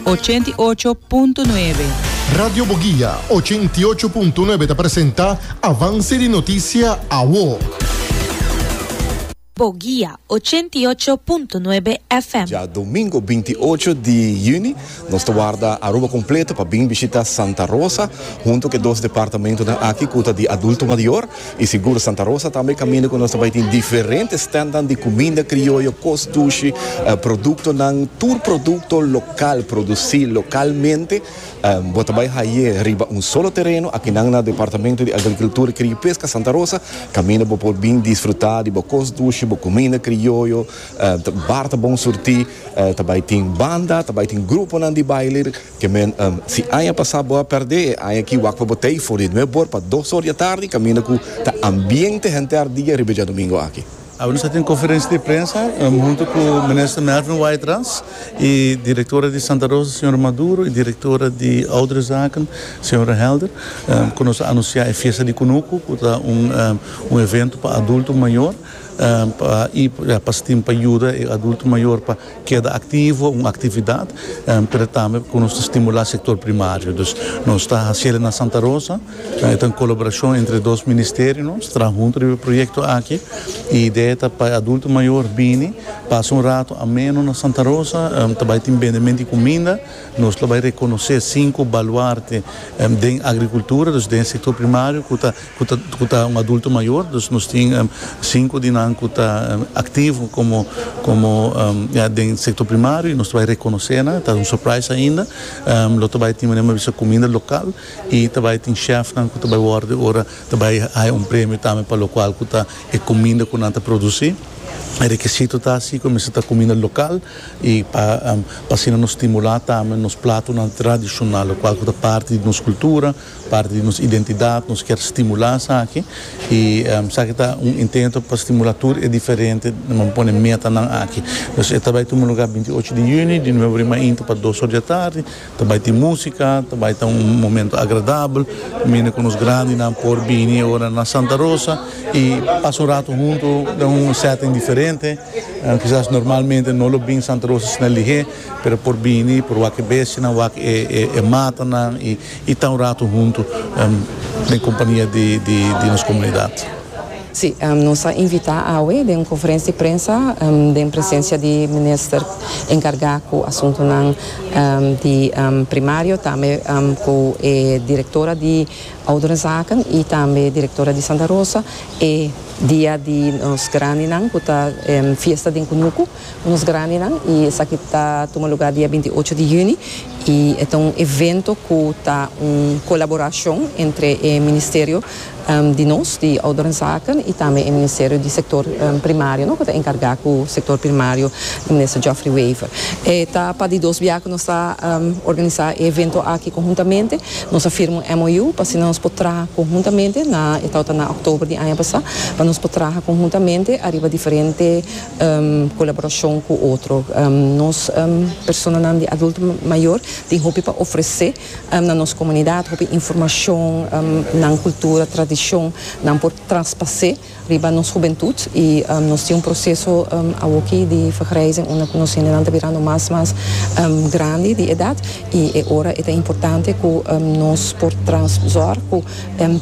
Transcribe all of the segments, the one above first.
ochenta i ocho punto nuebe. Radio Boguia ochenta i ocho punto nuebe ta presenta Avance di Noticia Awo. Boguia ochenta i ocho punto nuebe FM. Dja domingo binti i ocho di yüni nos ta warda Aruba kompleto pa bin bishita Santa Rosa huntu ku e dos departamentunan aki ku ta di adulto mayor. I sigur Santa Rosa tambe e kaminda ku nos ta bai tin diferente stèntnan di kuminda krioyo, kos dushi, produktonan, tur produkto lokal, produsí lokalmente. Bo ta bai haye riba un solo tereno akinan na Departamento di Agrikultura, Kria i Peska Santa Rosa, kaminda bo por bin disfrutá di bo kos dushi, bo kuminda krioyo, bar ta bon surtí, ta bai tin banda, ta bai tin gruponan di baile. Ke men, si aña pasá bo a pèrdè e aña akí wak pa bo tei for di nuep bor pa dos or di atardi kaminda ku ta ambiente henter ardia riba djadumingo aki. Awe nos a tin konferensia di prensa huntu ku Minister Melvin Waitrans i Direktora di Santa Rosa Señora Maduro i Direktora di Ouderenzaken Señora Helder ku nos a anunsiá e Fiesta di Kunuku ku ta un evento pa adulto mayor pa pastin pa yuda e adulto mayor pa Keda aktivo, un aktividat, pero tambe ku nos ta stimulá sektor primario. Dus nos ta hasié den Santa Rosa, e ta un kolaborashon entre dos ministerio, nos traha huntu riba e proyekto aki. E idea ta pa e adulto mayor bini pasa un rato ameno na Santa Rosa, ta bai tin bendementu di kuminda, nos lo bai rekonosé sinku baluarte den agrikultura, dus den e sektor primario ku ta ku ta un adulto mayor, dus nos tin sinku di nan ku ta aktivo komo komo ya den sektor primario, nos ta bai rekonosé nan, ta un surprise ainda, lo ta bai tin manera mi a bisa kuminda lokal i ta bai tin shèfnan ku ta bai wòrdu ora ta bai haña un premio tambe pa lokual ku ta e kuminda ku nan ta produsí, e rekisito ta si ku a mester ta kuminda lokal i pa asina nos stimulá tambe nos platonan tradishonal lokual ku ta parti di nos kultura. Parti di nos identidad, nos kier stimula esaki y esaki ta un intento pa stimula tur e diferente na men pone metanan aki. Entonces e ta bay tuma lugar binti ocho di juni di nueve rima inti pa dos or di atardi, ta bay tin musica, ta bay ta un momento agradabel, mende cu nos grandinan por bini ahora na Santa Rosa y pasa un rato hunto den un setting diferente, quizas normalmente no lo bin Santa Rosa asina lihé pero por bini, por wak e bestianan, wak e matanan y. Y ta un rato hunto den compania di nos comunidad. Si, nos a invita awe den un conferencia di prensa den presencia di Minister encarga cu asuntonan di Primario, tambe cu e Directora di Ouderenzaken y tambe Directora di Santa Rosa e dia di nos grandinan cu ta fiesta den cunucu. Nos Grandinan y esaki ta tuma lugar dia binti ocho di juni y e ta un evento cu ta un colaboracion entre e Ministerio di nos di Ouderenzaken y tambe e Ministerio di Sector Primario no cu ta encarga cu Sector Primario di Minister Geoffrey Wever. E ta pa di dos bia cu nos ta organiza e evento aki conhuntamente. Nos a firma un MOU pa asina nos por traha conhuntamente na e tawata na October di aña pasa pa nos por traha conhuntamente ariba diferente colaboracion cu otro. Nos personanan di adulto mayor tin hopi pa ofrece na nos comunidad, hopi informacion, nan cultura, tradicion nan por traspase riba nos hubentud y nos tin un proceso awoki di vergrijzing unda cu nos hendenan ta birando mas mas grandi di edad y e ora e ta importante cu nos por trans zorg cu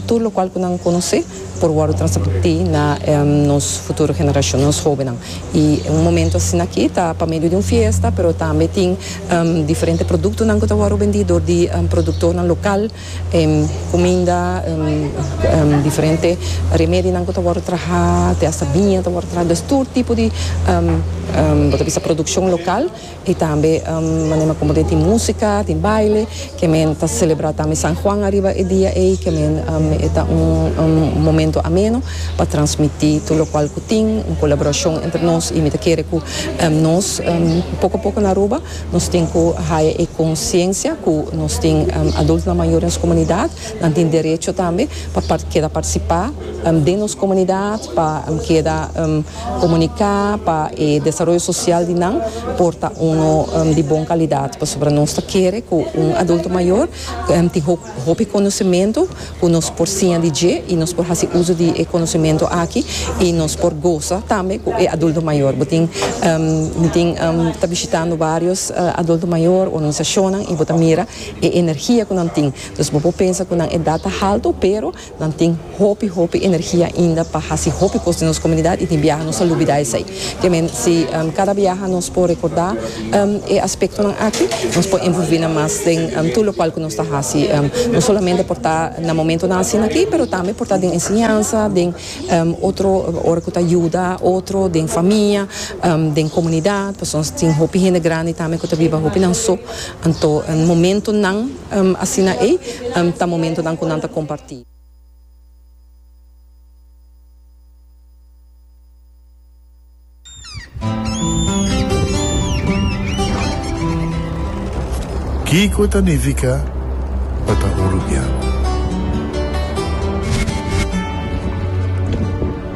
tur locual cu nan conoce por wòrdu transmití na nos futuro generashon, nos hóbennan. I un momentu asina akí ta pa medio di un fiesta, pero tambe tin diferente produktonan ku ta wòrdu bendí dor di produktornan lokal, kuminda, diferente remedionan ku ta wòrdu trahá, te asta biña ta wòrdu trahá. Dus tur tipo di bo ta bisa produkshon lokal. Y tambe manera como tin musica, tin baile, que men ta celebra tambe San Juan ariba e dia ey, que men e ta un momento ameno pa transmiti tur locual cu tin, un colaboracion entre nos y mi ta kere cu nos poco poco na Aruba nos tin cu haya e conciencia cu nos tin adultonan mayor den nos comunidad, nan tin derecho tambe pa keda participa den nos comunidad, pa keda. Comunica pa e desaroyo social di nan por ta uno di bon calidad, pasobra nos ta kere cu un adulto mayor tin hopi conocimento cu nos por siña di dje y nos por haci uzo di e conocimento aki y nos por goza tambe cu e adulto mayor. Bo tin bo tin ta bishitando varios adulto mayor o organisacionnan y bo ta mira e energia cu nan tin, entonces bo por pensa cu nan edad ta halto pero Nan tin hopi hopi energia ainda pa hasi hopi cos den nos comunidad y tin biaha nos a lubida esey. Kemen si cada biaha nos por recorda e aspectonan aki nos por envolvinan mas den tur locual cu nos ta hasi, no solamente por ta na momentonan asina aki pero tambe por ta den enseñansa, den otro ora cu ta yuda otro den famia, den comunidad, pasobra nos tin hopi hende grandi tambe cu ta biba hopinan so, anto momentonan Asina ei ta momentonan ku nan ta kompartí. Kiko ta nifiká pa ta orugiá?